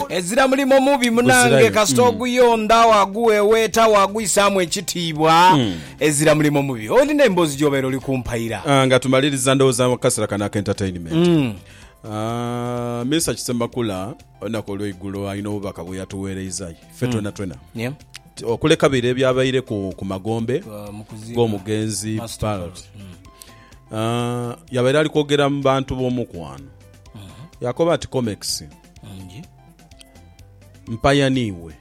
Ezira mulimo mubi munange Guzirayo. kasita oguyondha waguweweeta wagwisaamu ekitiibwa ezira mulimo mubi olina emboozi gyobeera oli kumpaira Ah, nga tumaliriza ndowooza mu kasera kano aka entertainment Mm. Ah, minisita kisemakula olunaku olweigulo alina obubaka bweyatuweereiza ffe Mm. twena twena Yeah. Ti- okuleka bire ebyabaire ku, ku magombe Uh, mu kuziika. g'omugenzi Master Parrot. Ah, yabaire ali kwogera mu bantu b'omukwano yakoba ati comex mpayaniiwe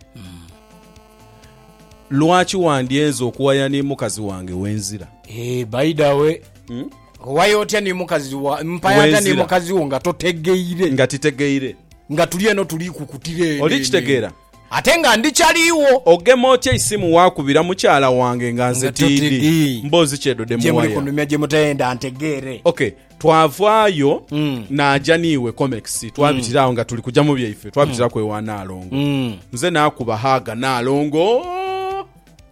lwaki wandyenze okuwaya ni mukazi wange wenzira Eh, by the way Hmm? owaya otya ni mukazi wa mpaya atya ni Wenzira. mukazi wo nga totegeire nga titegeire nga tuli eno tuli kukutira eno Oli eno kitegeera? eno. ate nga ndi kyaliwo ogema otya eisimu wakubira mukyala wange nga nze Nga totege. tiidi mboozi kyedode gye muli muwaya kunumya gye mutayenda ntegeere okay twavaayo Mm. naaja niiwe comex twabitira awo nga tuli kuja mu byaife twabitiraku ewa naalongo Mm. nze nakuba haga naalongo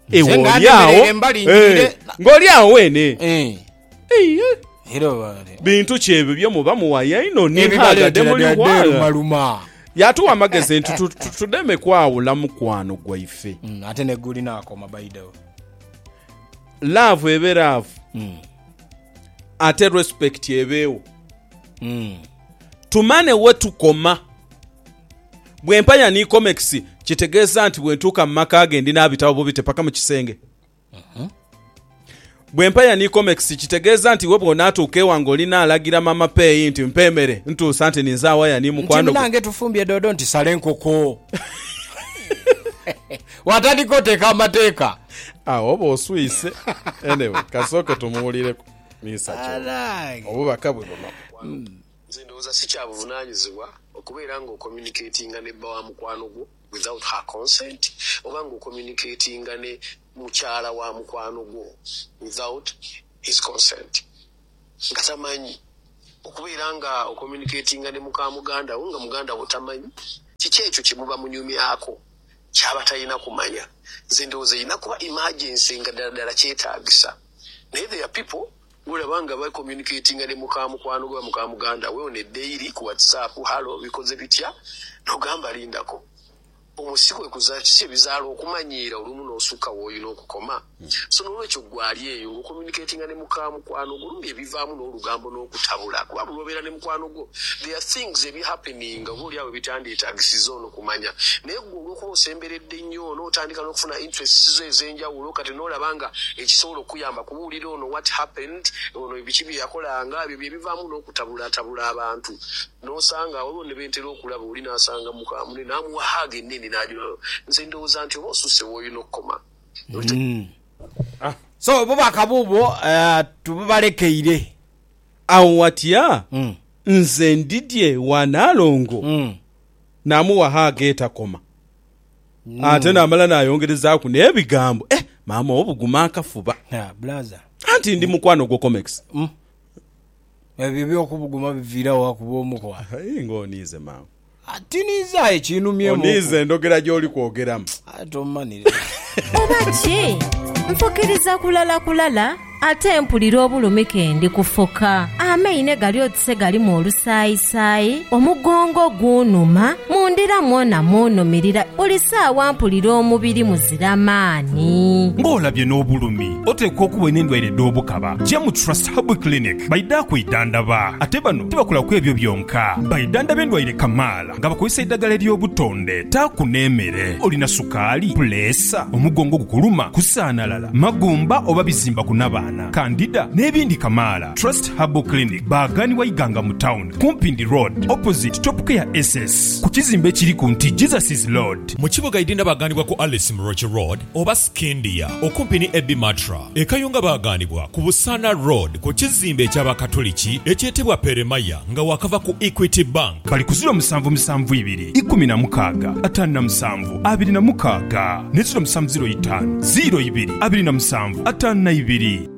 Nze ewe nga oli awo ndemerera embali njire. Eh, ng'oli awo weene Eh, Ei, eh, era bale. bintu ki ebyo bye muba muwaya ino ni haga Ebibaleetera demuli bya hwala deerumaluma. yatuwa amagezi nti tu- tu- tudeme kwawula mukwano gwaife Mm, ate negulina akoma baidawo laavu ebe laavu ate respect ebeewo mm. tumane wetukoma bwempanya ni comex kitegeeza nti bwentuuka mu maka ge ndi n'abitabo bubite paka mu kisenge mm-hmm. bwempanya ni comex kitegeeza nti we bwonaatuuka ewange olina alagira mama peeyi nti mpa emere ntuusa nti ninze awaya ni mukwano nti munange tufumbye doodo nti sale nkoko Watandika oteeka amateeka. Agho oba oswise. Anyway kasooke tumuwulireku Mister Kyobe obubaka bwe buno. Walupu, Nze ndowooza si kya buvunanyizibwa okubeera nga ocommunicatinga ne bba wa mukwano gwo without her consent oba nga ocommunicatinga ne mukyala wa mukwano gwo without his consent nga tamanyi. Okubeera nga ocommunicatinga ne muka muganda wo nga muganda wo tamanyi, kiki ekyo kye muba munyumyaako? kyabatalina kumanya nze ndowooza erina kuba emergency nga dala dala kyetagisa naye there are people gworaba nga ba communicatinga ne muka mukwano gwe oba muka muganda we on a daily ku whatsapp hallo bikoze bitya nogamba lindako omwo sikwe kuza kiki ebizaala okumanyiira olumu nosuka woyina okukoma. So n'olwekyo ggwe ali eyo ng'ocommunicatinga ne muka mukwano gwo, olumbe ebivaamu n'olugambo n'okutabula kuba buli lw'obeera ne mukwano gwo there are things ebi happeninga oba olyawo ebitandyetagisiza ono kumanya naye ggwe olw'okuba osemberedde nnyo ono otandika n'okufuna interests zo ez'enjawulo kati n'olaba nga ekisobola okukuyamba kubuulira ono what happened ono biki bye yakolanga ebyo bye bivaamu n'okutabulatabula abantu n'osanga waliwo ne be ntera okulaba oli n'asanga muka mune n'amuwa hug ennene n'agiwa nze ndowooza nti oba osusse w'olina okukoma. So obubaka buubwo tububalekeire. Agho watya nze ndidhie wa Nalongo namuwagho ag'etakoma. Ate namala nayongerezaaku n'ebigambo. Eh maama obuguma akafuba. Anti ndi mukwano gwo Comex. Ebyo eby'okubuguma biviira wa kuba omukwano? Aye nga oniize mangu. Tiniize aye kinumyemuku. Oniize ndhogera gy'oli kwogeramu. Aye tommanhirira. Oba ki? Nfukiriza kulala kulala ate mpulira obulumi ke ndi kufuka. Amaine gali oti se galimu olusaayisaayi, omugongo gunhuma, mu ndira mwona munhumirira, buli saawa mpulira omubiri muzira maani. Ng'olabye n'obulumi Oteekwa okuba olina endwaire edh'obukaba. Gyamu Trust Herbal Clinic baidha kwidhandaba. Ate bano tibakola ku ebyo byonka, baidhandaba endwaire kamaala nga bakozesa eidhagala ery'obutonde. Taaku n'emere. Olina sukaali, puleesa, omugongo ogukuluma, kusaanalala, magumba oba bizimba ku nabaana, kandida n'ebindi kamaala. Trust Herbal Clinic baaghanibwa Iganga mu tawuni ku Mpindi Road opposite Top Care SS ku kizimbe ekiri ku nti Jesus is Lord. Mu kibuga Idinda baaghanibwa ku Alice Muroki Road oba Scindia, okumpi ni Abbey Matra e Kayunga baagaanibwa ku Busaana Road ku kizimbe eky'Abakatuliki ekyetebwa Peremaya nga waakava ku Equity Bank. Bali ku ziro musanvu musanvu ibiri ikumi na mukaaga ataanu na musanvu abiri na mukaaga ne ziro musanvu ziro itaanu ziro ibiri abiri na musanvu ataanu na ibiri.